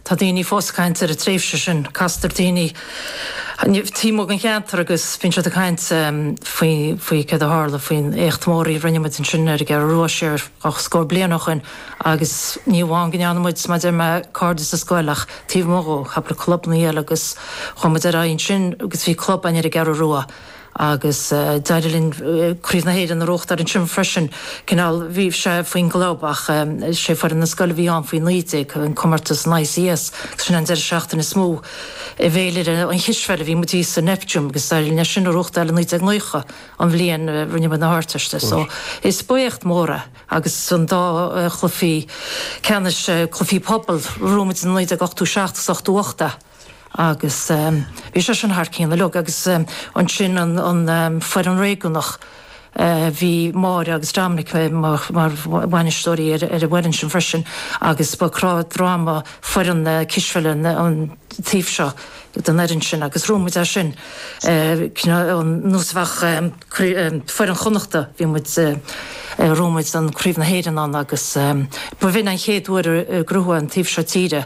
Tá daoine fós ag caint air, an tréimhse sin. Castar daoine ort taobh amuigh den cheantar agus bíonn siad ag caint faoi, faoi céard a tharla faoin éacht mór a rinne muid ansin ar an gCeathrú Rua siar dhá scór bliain ó shin agus ní amháin go ndearna muid, mar a deir mé, cairde sa scoil ach taobh amuigh dhó, chuig na clubannaí eile agus chuaigh muid ar aghaidh ansin agus bhí club ann ar an gCeathrú Rua. Agus d'éirigh linn Craobh na hÉireann a ghnóthachtáil ansin freisin. Cineál, bhí sé faoin gclub ach 'sé foireann na scoile a bhí ann faoi naoi déag, an comórtas an ICS. Sin an deireadh seachtaine is mó i bhféilire an chispheile a bhí muid thíos sa Neptune agus d'éirigh linn é sin a ghnóthachtáil i naoi déag naocha, an bhliain a rinne muid na hArdteist. So, ba éacht mór é. Agus an dá chluiche ceannais, Cluichí Pobail, ghnóthaigh muid i naoi déag ochtó seacht agus ochtó hocht é. Agus bhí sé sin thar cionn uilig. Agus ansin an foireann réigiúnach, bhí Máire agus Dominic mar bhainisteoirí ar an bhfoireann sin freisin agus ba cnámh droma foireann na cispheile an taobh seo den fhoireann sin agus ghnóthaigh muid é sin. Nós a bheadh foireann Chonnachta, bhí muid, ghnóthaigh muid Craobh na hÉireann ann agus b'in an chéad uair ar ghnóthaigh an taobh seo tíre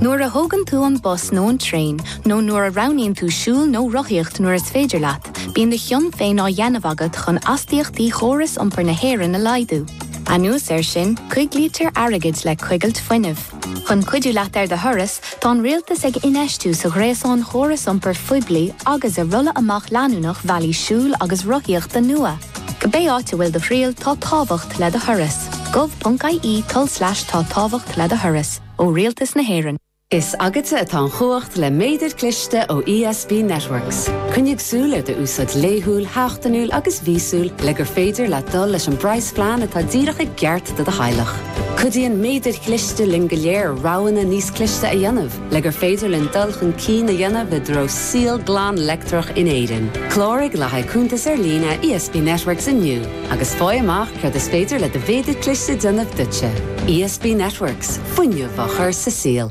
Nuair a thógann tú an bus nó an traein nó nuair a roghnaíonn tú siúl nó rothaíocht nuair is féidir leat, bíonn do chion féin á dhéanamh agat chun astaíochtaí chóras iompair na hÉireann a laghdú. Anuas air sin, coiglítear airgead le coigilt fuinnimh. Chun cuidiú leat ar do thuras, tá an Rialtas ag infheistiú sa ghréasán chóras iompair phoiblí agus i rolladh amach leanúnach bhealaí siúil agus rothaíochta nua. Cibé áit a bhfuil do thriall, tá tábhacht le do thuras. gov.ie tulslais tá tábhacht le do thuras. Ó Rialtas na hÉireann. Is agatsa atá an chumhacht le méadair cliste ó ESB Networks. Coinnigh súil ar d'úsáid laethúil, sheachtainiúil agus mhíosúil le gur féidir leat dul leis an bpraghasphlean atá díreach i gceart do do theaghlach. Cuidíonn méadair chliste linn go léir roghanna níos cliste a dhéanamh. le gur féidir linn dul chun cinn a dhéanamh i dtreo saol glan leictreach in Éirinn. Cláraigh le haghaidh cuntas ar líne ESB Networks inniu agus faigh amach céard is féidir le do mhéadar cliste a dhéanamh duitse. ESB Networks, fuinneamh á chur sa saol.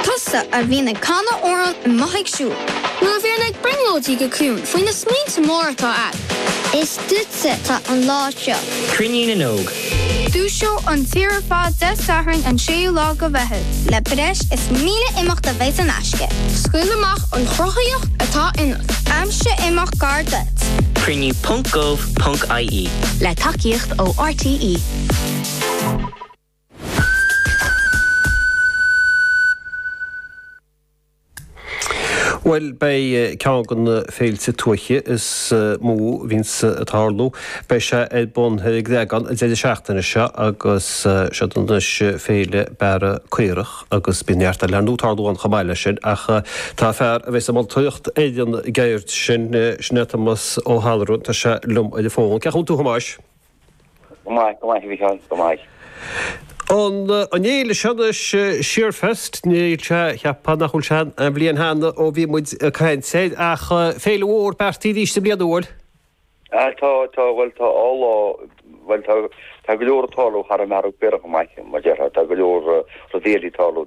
Tusa a bhíonn ag canadh amhráin amuigh ag siúl. Nó a bhíonn ag brionglóidí go ciúin faoi na smaointe móra atá a'd. Is. Duitse atá an lá seo. Cruinniú na nÓg. Dúiseoidh an tír ar fad Dé Sathairn an 6ú lá de Mheitheamh. Le breis is 1,000 imeacht a bheidh in aisce. Scaoil amach an chruthaíocht atá ionat. Aimsigh imeacht gar duit. Cruinniú ponc gov ponc ie. Le tacaíocht ó RTÉ. Bhuel, beidh ceann de na féilte tuaithe is mó a bhíonns ag tarlú, beidh sé ar bun ar an gCreagán an deireadh seachtaine seo agus siod anois Féile Bearradh Caorach agus bíonn neart eile ar ndóigh ag tarlú ann chomh maith leis sin ach tá fear a bheas ag moltóireacht ar an gceird sin, sin é Tomás Ó hAllmhuráin, tá sé liom ar an bhfón. Cén chaoi a bhfuil tú a Thomáis? Go maith, go maith a Mhicheáil, go maith. An fhéile seo anois, Shearfest, níl sé, cheapfá nach bhfuil sé aon bhliain cheana ó bhí muid ag caint air, ach féile mhór, beartaithe arís i mbliana, an bhfuil? Tá, tá, bhuel tá dhá lá, bhuel tá, tá go leor ag tarlú thar an mbearradh, beagnach, go maith, mar a déarfá, tá go leor rudaí eile ag tarlú.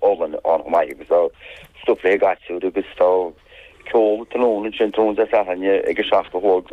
olann ann chomh maith agus tá stuif le haghaidh gasúir agus tá ceol tráthnóna ansin tráthnóna Dé Sathairn ag a seacht a chlog.